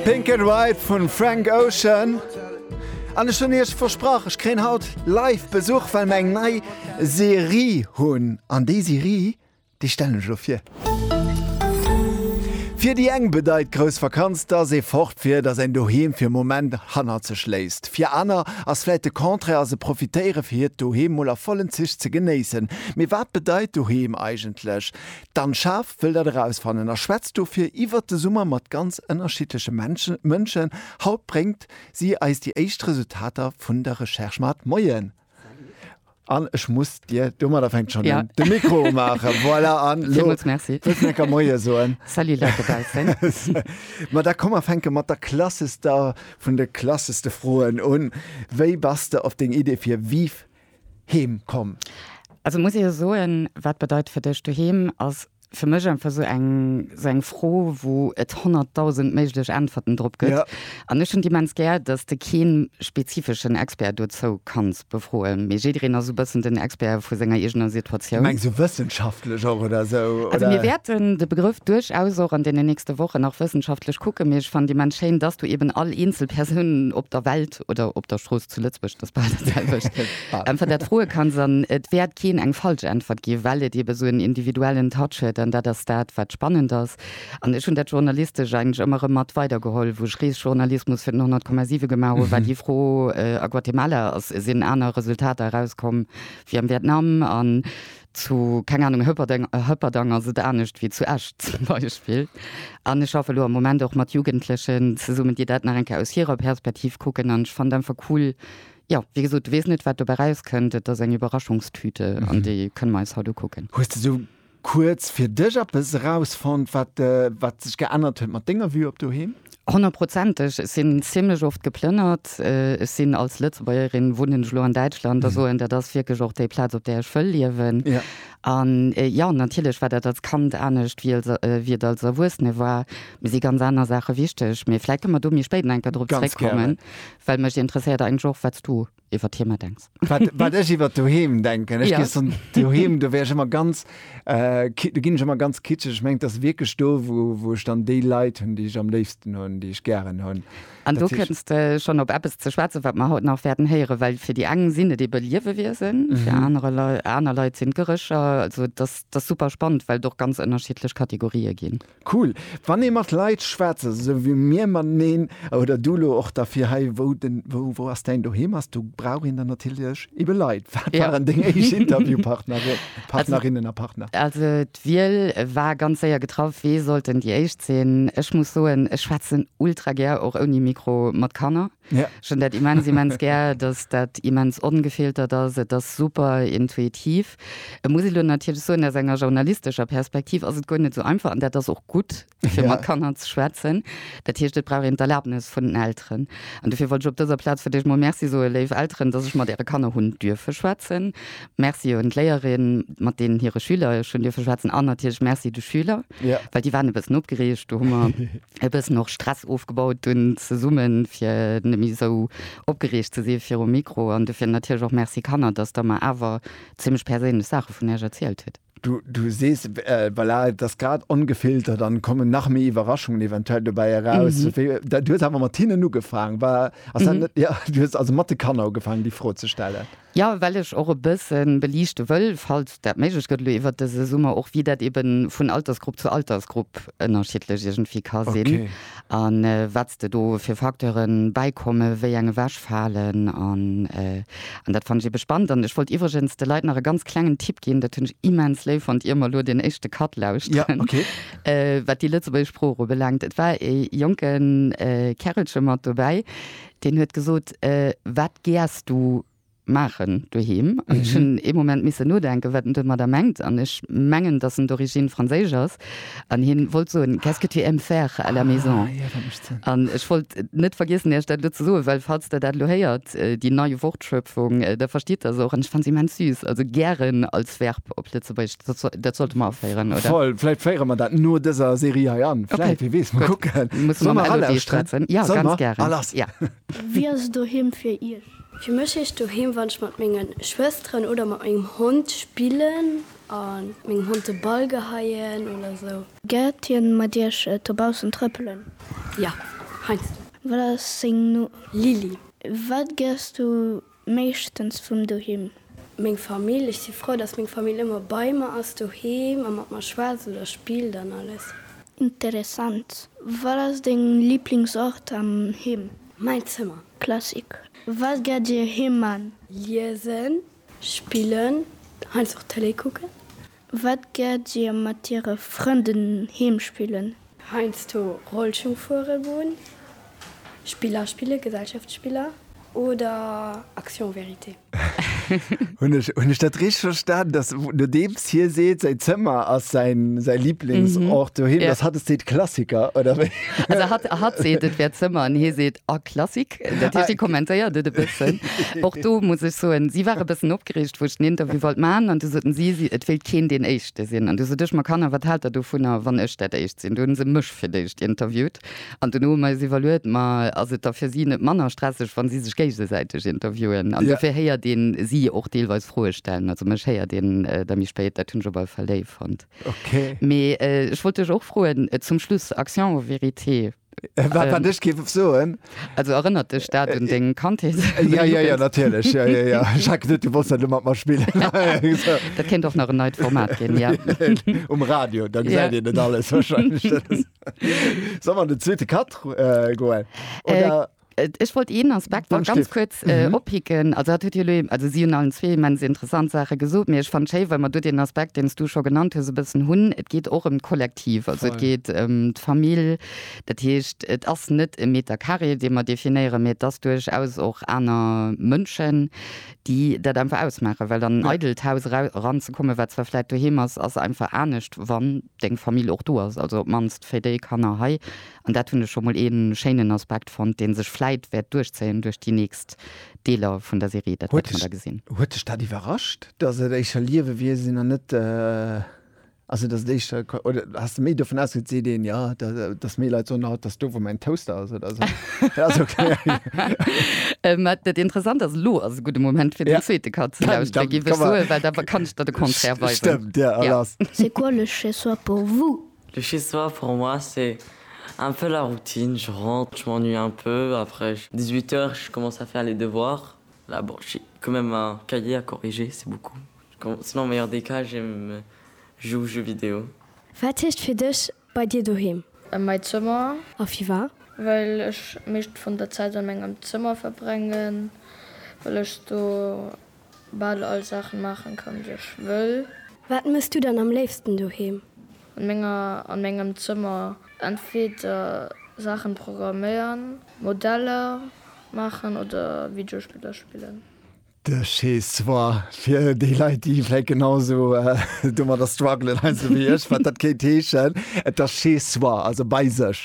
Pink and White vun Frank Ocean. An ech hunn Iech versprach, ech kréien haut live Besuch, well mer eng nei Serie hunn. An déi Serie, déi stellen ech elo vir. Fir déi eng bedeit grouss Vakanz, dass ee fort wier, dass een Doheem fir e Moment hannert sech léisst. Fir aner ass vläit de Contraire a se profitéiere fir hiert Doheem mol a vollen Zich ze genéissen. Mee wat bedeit Doheem eigentlech? D'Anne Schaaf wëll dat erausfannen a schwätzt dofir iwwert de Summer mat ganz ënnerschiddleche Mënschen. Haut bréngt si eis déi éischt Resultater vun der Recherche mat. Moien Anne, ech muss dir domadder fänkt schonn un de Mikro maachen. Voilà Anne, lo wëlls de mir ka Moie soen. Salut Leit dobaussen. Ma da komm mer fänke mat der klassester vun de klasseste Froen un, Wéi bass de op deng Idee fir Viv heem komm? Also muss ech jo soen, wat bedeit fir dech du heem ass fir mech einfach esou eng esou eng Fro wou et 100.000 méiglech Äntwerten drop gëtt. Ja. An ech hunn immens gär, datt s de keen spezifeschen Expert dozou kanns befroen, mee jiddereen ass esou bëssen den Expert vu senger eegener Situatioun. Mengs du wëssenschaftlech och oder esou oder? Also mir wäerten de Begrëff duerchaus och an deenen nächste Wochen nach wëssenschaftlech kucken, mee ech fannen immens schéin, datt s du eben all eenzel Persoun op der Welt oder op der Strooss zu Lëtzbuerg, et ass bal dat selwecht, äntweren dat froe kanns. An et wäert keen eng falsch Äntwert ginn, well et eebe esou en individuellen Touch huet. An dat ass dat, wat spannend ass. An ech hunn dat Journalistescht eigentlech ëmmer erëm mat weidergeholl, wou ech Reesjournalismus fir den 100,7 gemaach hunn, war déi Fro, A Guatemala sinn aner Resultater erauskomm wéi am Vietnam. An Zu, keng Ahnung, Hëpperdeng, Hëpperdang ass et anescht wéi zu Esch zum Beispill. An ech schaffe elo am Moment och mat Jugendlechen zesummen, déi dat nach eng Kéier aus hirer Perspektiv kucken. An ech fannen et einfach cool, jo, wéi gesot, du weess net, wat dobäi erauskënnt. Et ass eng Iwwerraschungstüte an déi kënne mer eis haut ukucken. Hues de sou kuerz fir dech eppes erausfonnt, wat, wat sech geännert huet mat denger Vue op doheem? Honnertprozenteg. Ech sinn zimlech oft geplënnert. Ech sinn als Lëtzebuergerin, wunnen ech elo an Däitschland a soen, dat ass wierklech och déi Plaz, op där ech wëll liewen. An jo, natierlech war dat als Kand anescht, wéi als, wéi et als Erwuessene war. Mir si ganz aner Saache wichteg. Mee vläicht kënne mer do méi spéit nach eng Kéier drop zeréckkommen, well mech interesséiert eigentlech och, wat s du iwwert Heemer denks. Wat ech iwwert doheem denken? Ech gees dann doheem, do wär ech ëmmer ganz, do ginn ech ëmmer ganz kitscheg. Ech mengen, et ass wierklech do, wou ech dann déi Leit hunn, déi ech am léifsten hunn, déi ech gären hunn. An do kënns de schonn op eppes ze schwätzen, wat mer haut nach wäerten héieren, well fir déi eng sinn et eebe Liewewiesen, fir aner Leit sinn et Gerécher. Also et ass super spannend, well et och ganz ënnerschiddlech Kategorië ginn. Cool wann ee mat Leit schwätzt esou wéi mir mateneen oder du lo och da fir hei wou den wou wou ass däin Doheem ass do brauch een dann natierlech ebe Leit. Wat Ja. waren deng éischt Interviewpartnere Partnerinnen a Partner? Also d'Wiel war ganz séier getraff, wee sollt denn déi éischt sinn? Ech muss soen, ech schwätzen ultra gär och ouni Mikro mat Kanner. Ja. Ech hunn dat immens, immens gär, dass dat immens ongefiltert ass. Et ass super intuitiv. Et muss ee lo natierlech soen, aus enger journalistescher Perspektiv ass et guer net esou einfach, an dat ass och gutt, fir mat Kanner ze schwätzen. Dat heescht, et brauch een d'Erlaabnes vun den Elteren. An dofir wollt ech op dëser Plaz fir d'éischt emol Merci soe léif Elteren, dass ech mat äre Kanner hunn duerfe schwätzen. Merci un d'Léierin, mat deenen hire Schüler ech hunn duerfe schwätzen. An natierlech Merci de Schüler, well déi waren e bëssen opgereegt. Do hu mer. e bëssen och Stress ofgebaut dunn zesummen fir net méi esou opgereegt ze si virum Mikro an dofir natierlech och Merci Kanner, dass der mer awer zimmlech perséinlech Saache vun iech erzielt hutt. Du sees, voilà, et ass grad ongefiltert an kommen nach méi Iwwerraschungen eventuell dobäi eraus. Du hues awer mat hinnen ugefaang, war, ass dat net? Jo, du hues also mat de Kanner ugefaang déi Fro ze stellen. Jo, well ech och e bësse beliichte wëll, falls dat méiglech gëtt elo iwwert dëse Summer, och wéi dat eeben vun Altersgrupp zu Altersgrupp ënnerschiddlech iergendwéi ka sinn a wat s de do fir Facteuren bäikommen, wéi eng ewechfalen an dat fannen ech eebe spannend. An ech wollt iwwregens de Leit nach e ganz klengen Tipp ginn, dat hunn ech immens léif fonnt, ier mer elo deen éischte Cut lauschteren, wat déi lëtzebuergesch Sprooch ubelaangt. Et war e jonke Kärelche mat dobäi, Deen huet gesot, Wat gäers du maachen doheem? An ech hunn ee Moment misse nodenken, wat en domadder mengt. An ech mengen, datt en d'Origine franséisch ass. An hie wollt soen, Qu'est-ce que tu aimes faire à la maison? An ech wollt net vergiessen, Iech dat elo ze soen, well falls Der dat elo héiert, déi nei Wortschöpfung, da verstitt Der se och. An ech fannen se immens süß. Also gären als Verb op Lëtzebuergesch. Dat sollte mer aféieren oder? Voll, vläit féiere mer dat no dëser Serie hei an. Vläit, okay. Wie weess, mol kucken. Muss mer mat Elodie schwätzen. Ja, ganz gären. Ah, lass. Ja. Wéi ass doheem fir Iech? Fir mech heescht doheem, wann ech mat menge Schwësteren oder mat mengem Hond spillen a mengem Hond de Ball geheien oder esou. Gärt Dir mat Iech dobaussen trëppelen? Ja, heiansdo. Wat ass seng Numm? Lili. Wat gärs Du Meeschtens vum Doheem. Meng Famill, ech si frou, dass meng Famill ëmmer bei mer ass doheem a mat mer schwätzt oder spillt an alles. Interessant. Wat ass deng Liblingsort am Heem? Mäin Zëmmer. Klassik. Wat gär Dir heem man? Liesen, spillen, heiansdo och Tëlee kucken. Wat gärt dir mat dire Frënden heem spillen? Heinsdo Rollschung fuere goen, Spiller spille, Gesellschaftsspiller oder Action vérité. Hunn ech hunn ech dat richteg verstan, dass nodeems hie seet, säin Zëmmer ass säin säin Liblingsort doheem, dass hatt seet Klassiker, oder wéi? Also hatt seet, et wär Zëmmer, an hie seet, a Klassik. Dat heescht, déi kommentéiert et e bëssen. Och do muss ech soen, si war e bëssen opgereegt, wou ech den Interview wollt man, an du soten si, si et wéilt keen deen Éischte sinn. An du sot ech, ma Kanner, wat haalt der dovunner, wann ech dat Éischt sinn? Du hunn se mech fir d'éischt interviewt an duerno hu mer eis iwwerluet, ma ass et da fir si net manner stresseg, wa si sech géigesäiteg interviewen? An dofir héiert een si och deelweis Froe stellen. Also mech héiert een da méi spéit. Dat hunn ech op alle Fall léif fonnt. Mee ech wollt dech och froen zum Schluss, Action ou vérité? Wat wat ech géif soen? Also erënnert dech dat un deng Kandheet? Ja, ja, ja, natierlech. Ja, ja, ja. Jacques, net, du wolls dat elo mat mer spillen. Dat kéint och nach en neit Format ginn, ja. Um Radio, da gesäit een net alles wahrscheinlech. Soll mer an den zweete Cut goen, oder? Ech wollt een Aspekt nach ganz kuerz oppicken. Mhm. Also dat huet Dir elo eben, also si hunn allen zwee immens interessant Saache gesot, mee ech fannen et schéi, wa mer do deen Aspekt, deen s Du scho genannt hues, e bëssen hunn. Et geet och ëm d'Kollektiv. Voll. Also et geet ëm d'Famill. Dat heescht, et ass net e Meter carré, dee mer definéieren, mee et ass duerchaus och aner Mënschen, déi dat einfach ausmaachen. Well an en eidelt Haus era, eranzekommen, wat zwar vläicht doheem ass, ass einfach anescht, wann. deng Famill och do ass, also op d'mannst fir déi Kanner hei, an dat hunn ech scho mol ee schéinen Aspekt fonnt, dee sech vläit wäert duerchzéien duerch déi nächst Deeler vun der Serie, dat wäert een da gesinn. Huet dech dat iwwerrascht, dass et éischer Liewewiesen an net, also dass et éischer, oder has de méi dovun ausgeet, seet een, jo, dass méi Leit soen, haut ass do wou mäin Toaster ass oder esou. Dat Interessant ass, elo ass e gudde Moment fir den zweete Cut ze lauschteren, géif ech soen, well da kann ech der de Contraire weisen. Dir all ass. C'est quoi le chez soi pour vous? Le chez soi pour moi c'est un peu la routine, je rentre, je m'ennuie un peu, après 18 heures je commence à faire les devoirs, là bon j'ai quand même un cahier à corriger, c'est beaucoup, sinon au meilleur des cas je me joue aux jeux vidéo. Wat heescht fir dech bei dir doheem? Mäi Zëmmer. A firwat? Well ech meescht vun der Zäit an mengem Zëmmer verbrengen, well ech do. Bal all Saachen maachen kann déi ech wëll. Wat mëss du dann am léifsten doheem? An menger an mengem Zëmmer entweder Saachen programméieren, Modeller maachen oder Videospiller spillen. De Chez soi, fir déi Leit déi vläit genau sou domadder struggelen heiansdo wéi ech, wat dat kéint heeschen, et ass Chez soi, also bei sech.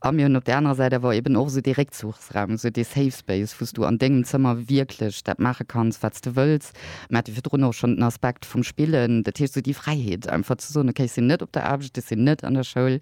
A mir hunn op där anerer Säit awer eben och esou dee Réckzuchsraum, esou dee Safe Space, wou s du an dengem Zëmmer wierklech dat maache kanns, wat s de wëlls. Mir hate virdrun och schonn den Aspekt vum Spillen, dat heescht esou déi Fräiheet einfach ze soen, okay, ech sinn net op der Aarbecht, ech sinn net an der Schoul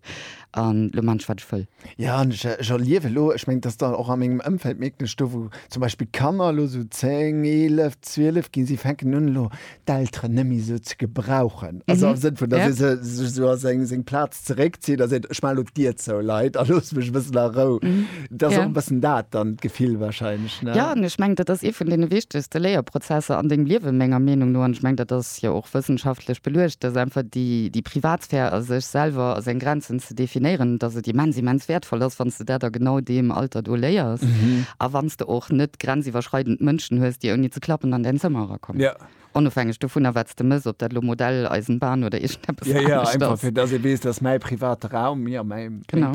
an elo maan ech, wat ech wëll. Jo, an ech erliewe elo, ech mengen, dass der och a mengem Ëmfeld mierkt ech do, wou zum Beispill d'Kanner elo esou 10, 11, 12 ginn, si fänken un elo d'Elteren net méi esou ze gebrauchen. Also mhm. am Sinn vun, dass ja. se sech so aus seng, seng Platz zréckzieht, da seet ech mal op Dir zou Leiit a los mech wëssen a Rou. Mhm. Dat ja. bëssen dat dann d'Gefill wahrscheinlich. Ne? Ja ech meng dat ass e vun den wichtigste Léierprozesser an dem Liewe menger Meinung no an ich meng dat ass ja och wëssenschaftlech beluecht, dass einfach die, die Privatsphär a sech selber a seng Grenzen ze definéieren, dass et immens, immens wäertvoll ass, wann s de dat a genau deem Alter do léiers a wann s de och net grenziwwerschreidend Mënschen hues, déi ouni ze klappen an däin Zëmmer erakommen, onofhängeg dovunner, wat s de mëss, ob dat elo Modell, Eisenbahn oder iergendeppes anescht ass. Genau.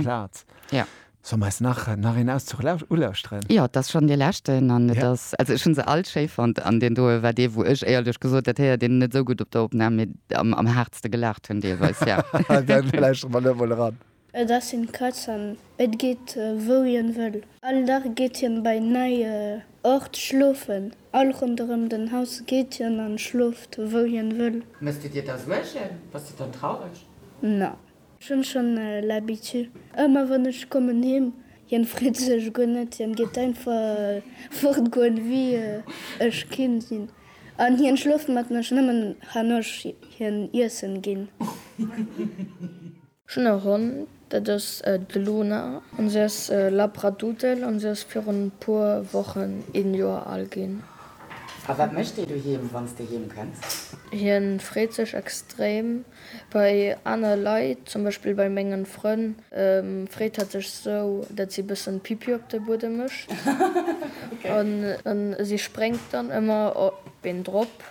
Soll mer eis nach nach een Auszug lausch ulauschteren? Jo, et ass schonn dee leschten an et ass, also ech hunn se all schéi fonnt an deen doe war dee wou ech, éierlech gesot, dat héiert een net esou gutt op der Opnam, mee am am haartste gelaacht hunn deelweis, jo. Dann lauschteren mer elo mol eran. Et ass een Katz an et geet wou hien wëll. All Dag geet hien bei neie Ort schlofen. All ronderëm den Haus geet hien an schlooft wou hien wëll. Mëss du dir da Suergen? Bass du dann traureg? Na, Ech hun schon l'habitude, emmer wann ech kommen heem, hien freet sech guer net, hien geet einfach fort goen wéi ech kim sin, an hien schlooft mat mech nemmen han ech hien iessen gin. Ech hun e Hond, dat ass d'Luna, an se ass Labradoodle, an se ass virun puer Wochen een Joer al gin. A wat mecht dee doheem wanns de heem kënns? Hien freet sech extrem. Bei aner Leit, zum Beispill bei mengen Frënn, freet hat sech sou dat si bëssen Pipi op de Buedem mecht an si sprengt dann ëmmer op een drop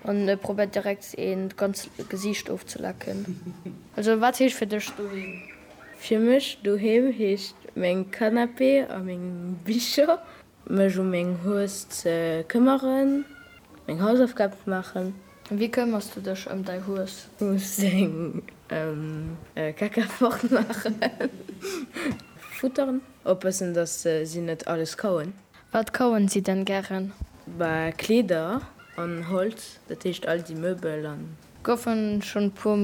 an probert direkt een d'ganz Gesiicht ofzelecken. Also wat heescht fir dech doheem? Fir mech doheem heescht meng Canapé a meng Bicher Mech u meng Hues ze këmmeren. Meng Hausaufgab maachen. Wéi këmmers du dech ëm däi Hues? U seng Kacka fort maachen. Futteren. Oppassen, dass si net alles kauen. Wat kauen si denn gären? Bah, Kleeder an Holz. Dat heescht all déi Möbel an Goufen schon puer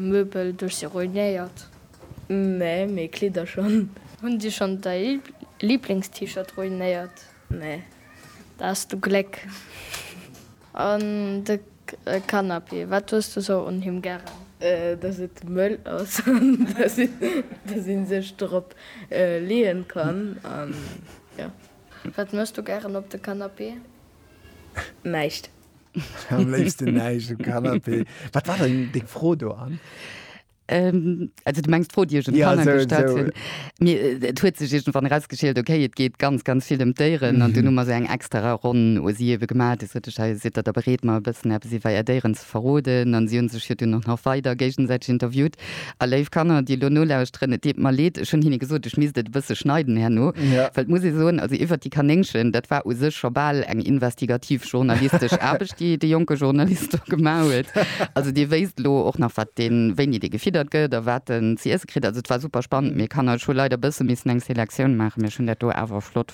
Möbel durch sie ruinéiert? Nee, mee Kleeder schon. Hun sie schon dei Lieblings T-Shirt ruinéiert? Nee, da has du Gleck. An de Canapé, wat hues du sou un him gären? Dass et mëll ass an dass een sech drop leeën kann an jo. Wat mëchs du gären op de Canapé? Näischt. Am léifsten näischt um Canapé. Wat war dann deng Fro do an? Ähm, also du mengst Fro Dir schon ja, so, so. mir äh, et huet sech irgendwann rausgeschillt okay et geht ganz ganz viel um Déieren an mhm. du nummer se eng extra Ronn o sie ewe gemat si dat der bereet mal bëssen App si weier Déieren ze verroden an si hun sech hier du noch nach weider géigensäiteg interviewt A léif Kanner, déi elo nolauschteren, et deet mer leed, ech hunn hinne gesot, ech misst et e bësse schneiden herno, well et muss ee soen, also iwwert déi Kanéngchen, dat war u sech scho bal eng investigativ journalistesch Aarbecht, déi de jonke Journalist do gemaach huet. Also dee wéisst elo och nach, wat deen, wéini dee gefiddert gëtt a wat en ze iesse kritt. Also et war super spannend, mee Kanner, ech hu leider e bësse missen eng Selektioun maachen, mee ech hunn dat do awer flott.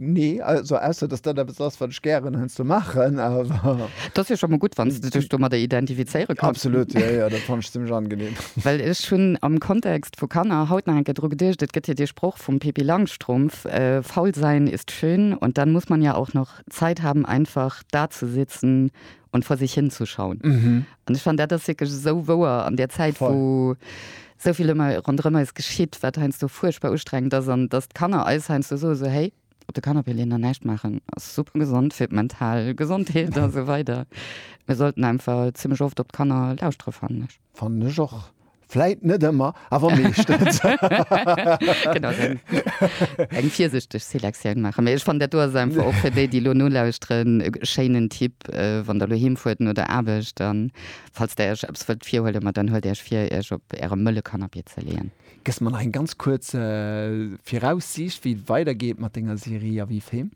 Nee, also ausser dass dat eppes ass wat ech gären heiansdo maachen, awer. Dat ass jo scho mol gutt, wann s de dech domadder identifizéiere kanns. Absolut, jo, jo, dat fannt ech zimmlech angenehm. Well ech hunn am Kontext vu Kanner haut nach eng Kéier dru geduecht, et gëtt jo dee Sproch vum Pippi Langstrumpf, Faul sein ist schön und dann muss man ja auch noch Zeit haben einfach dazusitzen und vor sich hinzuschauen. Mhm. Und ich fand dat ass wirklich so wouer an der Zeit Voll. wo soviel immer rondrëmmer es geschitt, wat heinst du furchtbar ustrengend ass an dass d'Kanner eis heinst du so so hey op de Kanapé leen an näischt maachen ass super gesond fir d'mental Gesondheet a so weider. Mir sollten einfach ziemlech oft op d'Kanner lauschtere fannen ech. Fannen ech och. Vläit net ëmmer, awer meeschtens. Genau, dann eng virsichteg Selektioun maachen. Mee ech fannen, dat do ass einfach och fir déi, déi elo nolauschteren, e schéinen Tipp, wann der elo heem fuert no der Aarbecht an falls der iech eppes wëllt virhuelen, ma dann huelt iech vir, iech op äre mëlle Canapé ze leeën. Gëss mer nach eng ganz kuerz Viraussiicht, wéi et weidergeet mat denger Serie a wéi Film?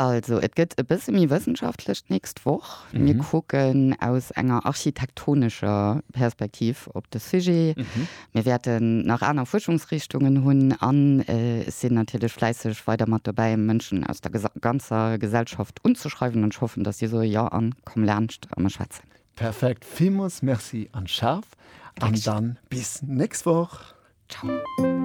Also et gëtt e bësse méi wëssenschaftlech d'nächst Woch. Mir kucken aus enger architektonescher Perspektiv op de Sujet. Mir wäerten nach aner Fuerschungsrichtungen hunn an sinn natierlech fläisseg weider mat dobäi, Mënschen aus der ganzer Gesellschaft unzeschreiwen. An ech hoffen, datt si soe, Jo, an komm laanscht a mir schwätzen. Perfekt, villmools Merci an Schaf an dann bis d'nächst Woch. Ciao.